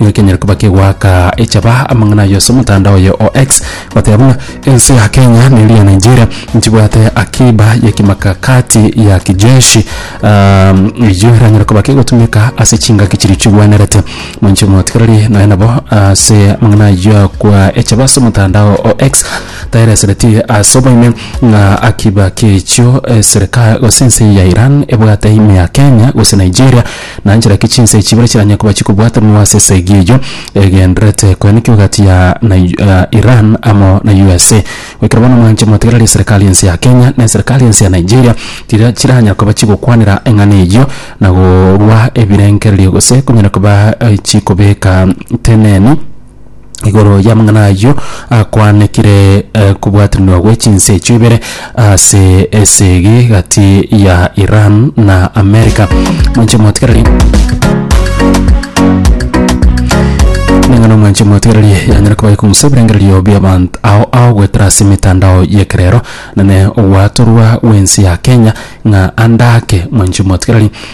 Nigo kenyare koba kegoaka echaba amang'ana aye ase omotandao oye o X, goteba buna, Ense ya Kenya na eria ya Nigeria nchibwate akiba ye kimakakati ya kijeshi. Um, eyio eranyare koba kegotumeka ase chingaki chiria chigwenerete. Mwanche motigereri nonya nabo ase amang'ana ayio akwa echaba ase omotandao o X, taeresereti ase oboime ng'a akiba kechio eserika gose ense ya Iran ebwate ime ya Kenya gose Nigeria, Nanchera ki chinsa echi ibere chiranyare koba chikobwatanwa ase esegi eyio egendererete koenekio egati ya Iran amo na USA? Goikera bono mwanche motegerere eserikari ense ya Kenya na eserikari ense ya Nigeria tiria chiranyare koba chigokwanera eng'ana eyio na korwa ebirengererio gose konyare koba chikobeka teneni igoro y'amang'ana ayio akwanekire eh, kobwatiranwa gwe chinse echio ibere ase esegi gati ya Iran na America mwanche motikereri ning'ana mwanche motigererie yanyara kuba ikumsa ebirengererio bia abantu ao ao gwetera ase emitandao yekerero nane ogwatorwa wensi ya Kenya ng'a andake mwanche motigereri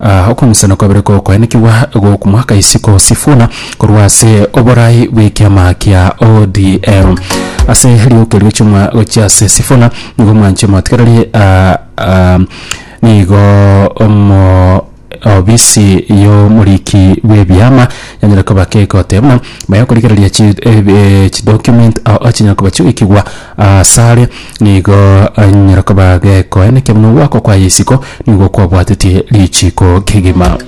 Aa okomisana kwabere gokoenekigwa gokmoaka isiko Sifuna korwa ase oborai bw'ekiama kia ODM. Ase rioka erio chiomwa gochia ase Sifuna nigo mwanche motigererie aa aa nigo omo obisi y'omoriki bw'ebiama yanyare koba kegotebuna baye okorigereria chi ebe chidocument ao chinyare koba chigoikigwa Asare nigo anyare koba gekoenekia buna ogwakwa kwaye isiko nigo kwabwatetie richiiko kegima.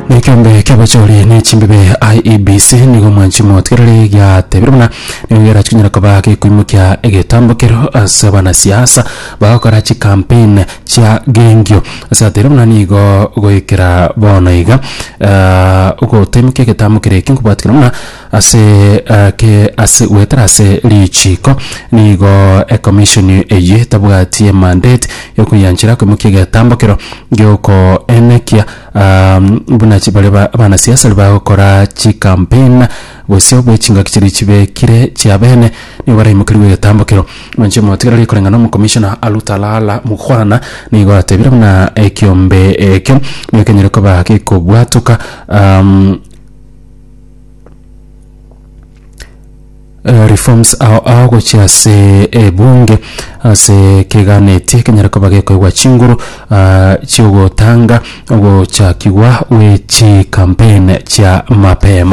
Na ekiombe ki'abachori ne chimbibe IEBC nigo mwanchi motigereri giatebire buna nigo gerachi konyara koba gekoimokia egetambo kero ase abanasiasa bagokora chikampeni chiagengio. Ase atera buna nigo goikera bono iga, ah, ogoteemeka egetambo keria eke nkobwatikana buna ase ah, ke ase goetera ase richiiko, nigo eCommission eye etabwati emandate yokoianchera okoimokia egetambo kero giokoenekia ah, buna chi baria ba- abanasiasa baria bagokora chicampaign gose bw'echingaki chiria chibekire chiabene nigo baraimokerigwe egetambo kero. Inche motigera ri koreng'ana omokomishona Alutalala Mukhwana nigo atebire buna ekiombe ekio nigo kenyare koba gekobwatoka um, eh, reforms ao ao gochia ase ebunge ase keganetie kenyare koba gekoigwa chinguru ah, chiogotanga ogochakigwa gwe chikampeni chia mapema